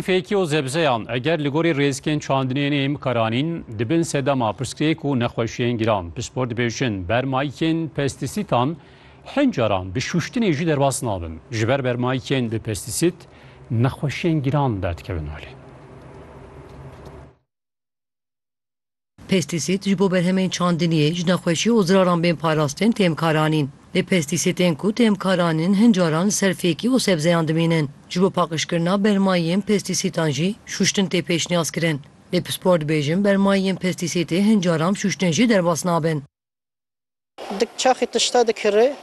Fêkî û zebzeyan eger li gorî rêzikên çandinê neyên bikaranîn, dibin sedema pirsgirêk û nexweşiyên giran. Pispor dibêjin, bermayikên pestîsîtan hin caran bi şûştinê jî derbas nabin. Ji ber bermayikên bi pestîsît, nexweşiyên giran derdikevin malê. Pestîsîd ji bo berhemên çandiniyê, ji nexweşî û ziraran bên parastin têm karanîn. Lê pestîsîtên ku têm karanîn hin caran li ser fêkî û sebzeyan dimînin. Ji bo paqijkirina bermayiyên pestîsîtan jî şûştin tê pêşniyazkirin. Lê pispor dibêjin bermayiyên pestîsîtê hin caran bi şûştin jî derbas nabin. Dik çaxê tişta dikirê,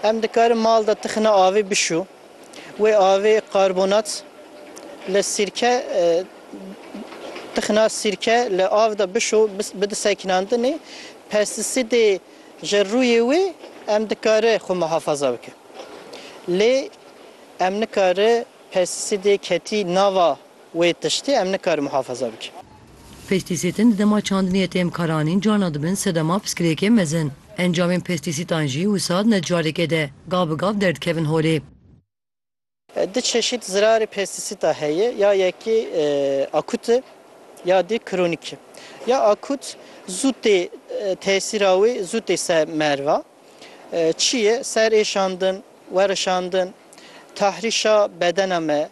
em dikarin mal de tixina avê bişû. Wê avê karbonat li sîrke tixina sîrke li av de bişû bide sekinandinê. Pestisîdê ji rûyê wê em dikare xwe muhafaza bike. Lê em nikare pestisîdê ketî nava. Wê tiştê em nikarin muhafaza bikin. Pestîsîtin di dema çandiniyê têm karanîn carna dibin sedema piskirêkê mezin. Encamên pestîsîtan jî wisa di necarêkê de gav bi gav derdikevin holê. Du çeşît zirarê pestîsîta heye ya yekê akut e ya dê kronîk e. Ya akut zû tê tesîra wê zû tê ser merva Çi ye? Ser êşandin, werişandin, tahrîşa bedena me.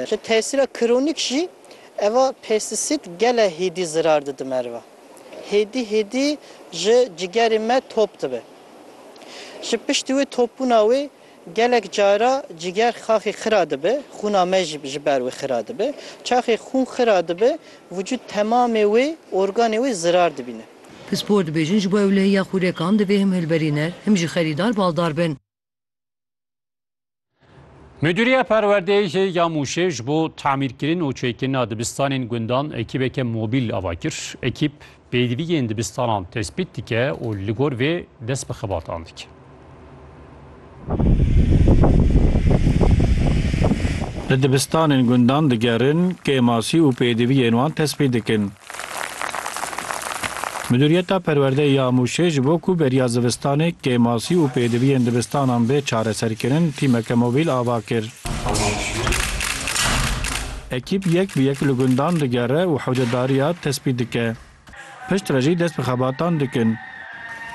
Ji tesîra kronîk jî eva pestîsîd gele hêdî zirar dide meriva. Hêdî hêdî ji cigerê me top dibe. Ji piştî wê topbûna wê, Gelek cara ciger xaxê xira dibe, xûna me jî ji ber wê xira dibe. Çaxê xûn xira dibe, vücut temamê wê, organê wê zirar dibîne. Pispor dibêjin ji bo ewlehiya xûrekan divê him hilberîner, him jî xerîdar baldar bin. Mudîriya Perwerdeyê ya Mûşê ji bo tamîrkirin û çêkirina dibistanên gundan ekîbeke mobîl ava kir. Ekîb Pêdiviyên dibistanan tespît dike û li gor vê dest bi xebatan dike. Li dibistanên gundan digerin, kêmasî û pêdiviyên wan tespît dikin. Midûriyeta Perwerdeyê ya Mûşê ji bo ku beriya zivistanê, kêmasî û pêdiviyên dibistanan bê çareserkirin, tîmeke mobîl ava kir. Ekîp yek bi yek li gundan digere û hewcedariya tespît dike. Piştre jî dest bi xebatan dikin.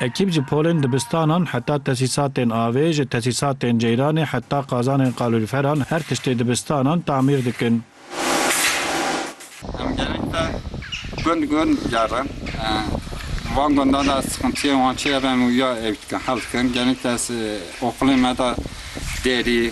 Ekîp ji polên dibistanan heta tesîsatên avê, ji tesîsatên ceyranê heta qazanên qalûlferan her tiştê dibistanan tamîr dikin. Em gelek te gund gund digerin. Van gundan de ez sixintiyên wan çi ye em wiya ew dikin, hel dikin. Gelek te ez oxulên me de derî.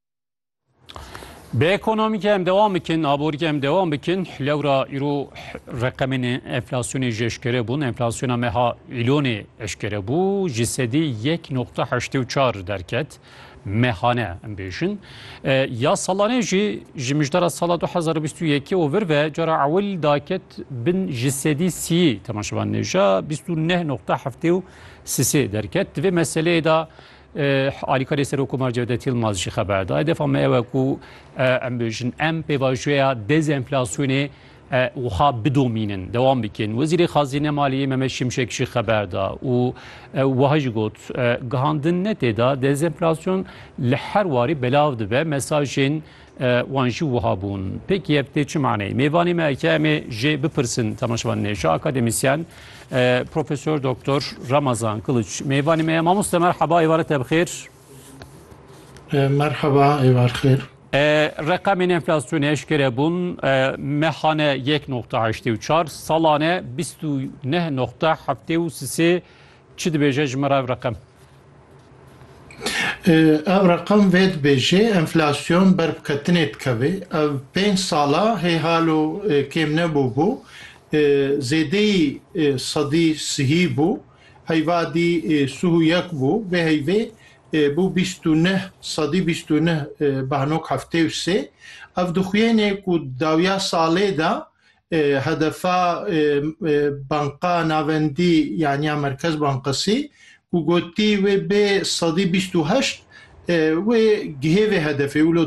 Bi ekonomîkê em dewam bikin, aborîkê em dewam bikin. Lewra îro reqemên enflasyonê ji eşkere bûn. Enflasyona meha îlonê eşkere bû. Ji sedî yek noqta heştê û çar derket. Mehane em bêjin. Ya salanê jî ji mijdara sala 2021 û vir ve cara ewil daket bin ji sedî sî temaşevan nêja 29.7 sisê derket. Divê meseleyê da Alîkarê Serokkomar Cevdet Yilmaz jî xeber da. Hedefa me ew e ku em bêjin em pêvajoya dezenflasyonê wiha bidomînin, dewam bikin. Wezîrê Xazîne Maliyê Mehmet Şimşek jî xeber da û wiha jî got, Gihandin ne tê de dezenflasyon li her warî belav dibe, mesajên Wan jî wiha bûn. Pêk yek tê çi maneyê? Mêvanê me ke em ê jê bipirsin temaşevan nêşa akademîsyen Profesor Doktor Ramazan Kiliç. Mêvanê me ye mamoste merheba êvare te bi xêr. Merheba êvar xêr. Reqemên enflasyonê eşkere bûn mehane yek noqta heştê û çar salane bîst û neh noqta heftê û sisê Çi dibêje ji min re ev reqem? Ev reqem vê dibêje enflasyon ber bi ketinê dikeve. Ev pênc sala hê halo kêm nebû bû. Zêdeyî sedî sihî bû. Heyva dî suh û yek bû. Vê heyvê bû bîst û neh sedî bîst û neh behnok heftê û sê. Ev dixuyêne ku di dawiya salê de Hedefa Banka Navendî yanî ya Merkez Bankasî ku gotî wê bê sedî bîst û heşt wê gihê vê hedefê wilo